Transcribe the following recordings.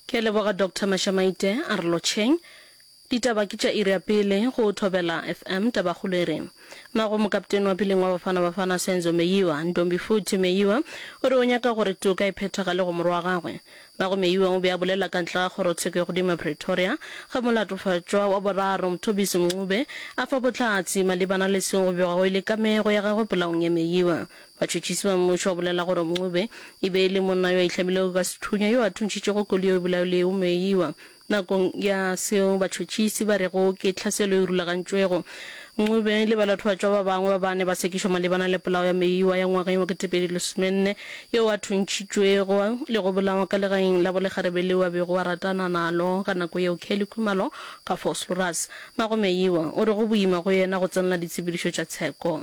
Ke a leboga Doctor Mashamaite, a re lotšheng. Ditaba ke tša iri ya pele go Thobela FM Tabakgolo e re, Mago mokapteni wa peleng wa Bafana Bafana Senzo Meyiwa, Ntombifuthi Meyiwa, o re o nyaka gore toka e phethagale go morwa wa gagwe. Mago Meyiwa o be a bolela ka ntle ga kgorotsheko e godimo ya Pretoria ge molatofatšwa wa boraro Mthobisi Mncube a fa bohlatse malebana le seo go begwago e le kamego ya gagwe polaong ya Meyiwa. Batšhotšhisi ba mmušo ba bolela gore Mncube e be e le monna yo a itlhabilego ka sethunya yo a thuntšhitšego koli yo e bolayo le yeo moeiwa. Nakong ya seo batšhotšhisi ba rego ke tlhaselo e rulagantšwego. Mncube le balatofatšwa ba bangwe ba bane ba sekišwa malebana le polao ya moeiwa ya ngwageng wa 2014 yo a thuntšhitšwego le go bolawa ka legaeng la bolegarebe leo a bego a ratana nalo ka nako yeo. Kelly Khumalo ka Vosloorus. Mago Meeiwa o re go boima go yena go tsenela ditshepedišo tša tsheko.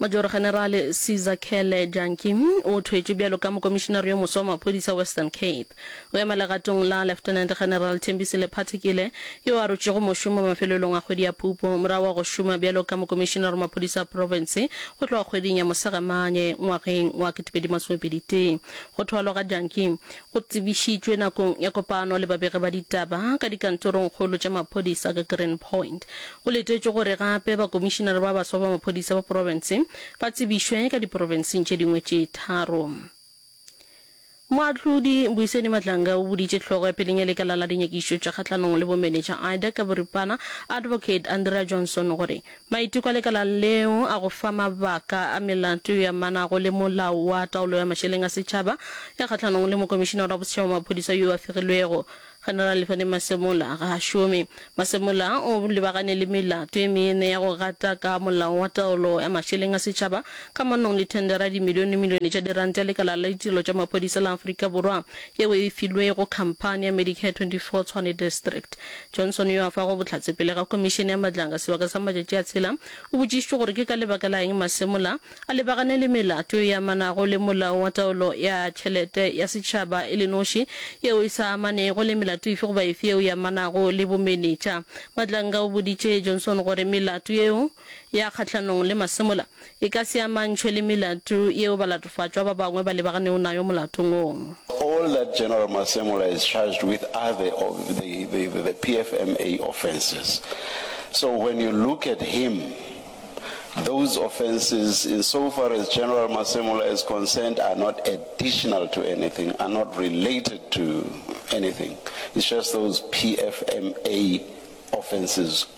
Major-generale Caesar Cele Jantjie o thwetšwe bjalo ka mokomišinare yo moswa wa maphodisa Western Cape. O ema legatong la Lieutenant General Thembisile Phathekile yo a rotšwego mošomo mafelelong a kgwedi ya Phupu morago ga go šoma bjalo ka mokomišinare wa maphodisa a profense go tloga kgweding ya Mosegamane ngwageng wa 2021. Go thwalwa ga Jantjie Go tsebišitšwe nakong ya kopano le babegi ba ditaba ka dikantorongkgolo tša maphodisa ka Green Point. Go letetšwe gore gape bakomišinare ba baswa ba maphodisa ba profense ba tsebišwe ka diprofenseng tše dingwe tše tharo. Moahlodi Mbuiseni Matlanga o boditše hlogo ya peleng ya lekala la dinyakišo tša kgahlanong le bomenetša IDAC ka boripana, Advocate Andrea Johnson gore Maiteko a lekala leo a go fa mabaka a melato e amanago le Molao wa Taolo ya Mašeleng a Setšhaba ya kgahlanong le Mokomišinara wa Bosetšhaba wa Maphodisa yo a fegilwego, General Lefane Masemola, ga a šome. Masemola o lebagane le melato e mene ya go gata ka Molao wa Taolo ya Mašeleng a Setšhaba kamanong le thendera ya dimilionemilione tša diranta ya Lekala la Ditirelo tša Maphodisa la Afrika Borwa yeo e filwego khamphani ya Medicare 24 Tshwane District. Johnson yo a fago bohlatse pele ga Khomišene ya Matlanga sebaka sa matšatši a tshela, o botšišitšwe gore ke ka lebaka la eng masemola a lebagane le melato e amanago le Molao wa Taolo ya Tšhelete ya Setšhaba e le noši yeo e sa amanego le melato efe goba efe yeo e amanago le bomenetša. Matlanga o boditše Johnson gore melato yeo ya kgahlanong le masemola E ka se amantšhwe le melato yeo balatofatšwa ba bangwe ba lebaganego nayo molatong wo. All that General Masemola is charged with are the of the the the the PFMA offences. So when you look at him, those offences in so far as General Masemola is concerned are not additional to anything, are not related to anything. It's just those PFMA offences.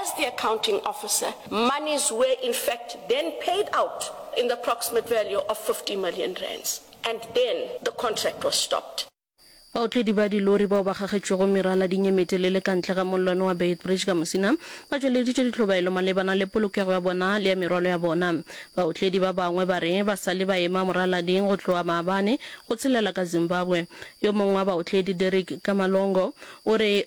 As the accounting officer, monies were in fact then paid out in the approximate value of 50 million rands and then the contract was stopped. Baotledi ba dilori bao ba gagetšwego merala di nyemetelele ka ntle ga mollwane wa Beitbridge ka Musina ba tšweleditše dihlobaelo malebana le polokego ya bona le ya merwalo ya bona. Baotledi ba bangwe ba re ba sa le ba ema moralading go tloga maabane go tshelela ka Zimbabwe. Yo mongwe wa baotledi, Derrick Kamalongo, o re,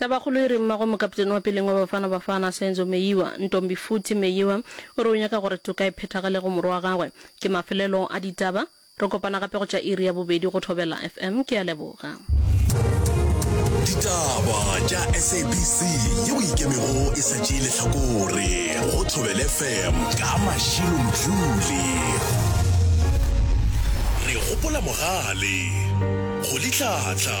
Tabakgolo e re mmagwe mokaptene wa peleng wa Bafana Bafana, Senzo Meyiwa, Ntombi Futhi Meyiwa, o re o nyaka gore toka e phethagale go morwa wa gagwe. Ke mafelelo a ditaba. Re kopana gape go tša iri ya bobedi go Thobela FM. Ke a leboga. Ditaba tša SABC yeo e ikemego e sa tšee lehlakore go Thobel FM ka Mashilo Mdluli. Re gopola mogale go litlhatlha.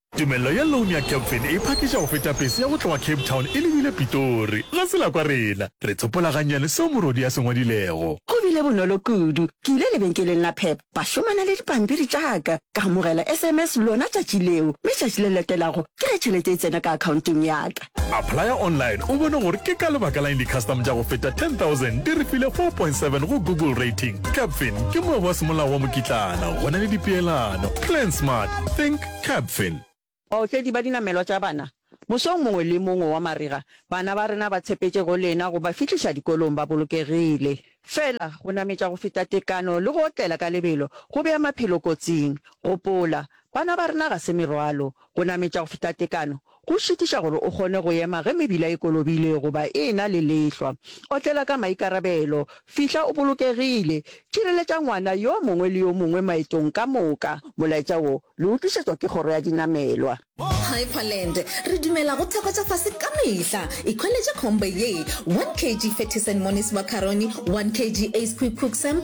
Tumello ya loan ya Capfin e phakiša go feta pese ya go tloga Cape Town e lebile Pitori. Ga se la kwa rena. Re tsopola gannyane seo morwedi a se ngwadilego. Go bile bonolo kudu. Ke ile lebenkeleng la Pep, ba šomana le dipampiri tša ka. Ka amogela SMS lona tšatši leo, mme tšatši le latelago ke ge tšhelete e tsena ka akhaonteng ya ka. Applya online o bone gore ke ka lebaka la'ng di-custom tša go feta 10,000 di re file 4.7 go Google Rating. Capfin ke moabi wa semolao wa mokitlana go na le dipeelano. Plan smart. Think. Capfin. Baotledi ba dinamelwa tša bana, Mosong mongwe le mongwe wa marega, bana ba rena ba tshepetše go lena go ba fihliša dikolong ba bolokegile. Fela, go nametša go feta tekano le go otlela ka lebelo go bea maphelo kotsing. Gopola, bana ba rena ga se merwalo. Go nametša go feta tekano Go šitiša gore o kgone go ema ge mebila e kolobile goba e e-na le lehlwa, otlela ka maikarabelo. Fihla o bolokegile. Tšireletša ngwana yo mongwe le yo mongwe maetong ka moka. Molaetša wo le o tlišetšwa ke Kgoro ya Dinamelwa. Hyperland, Re dumela go theko tša fase ka mehla. Ikhweletše combo ye, 1 kg Fettisen Monis Macaroni, 1 kg Ace Quick Cook Samp,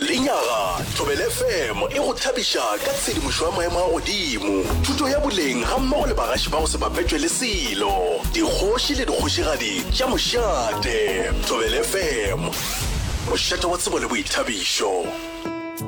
Lenyaga, Thobela FM e go thabiša ka tshedimošo ya maemo a godimo, thuto ya boleng gammogo le bagaši ba go se bapetšwe le selo, dikgoši le dikgošigadi tša mošate. Thobela FM, mošate wa tsebo le boithabišo.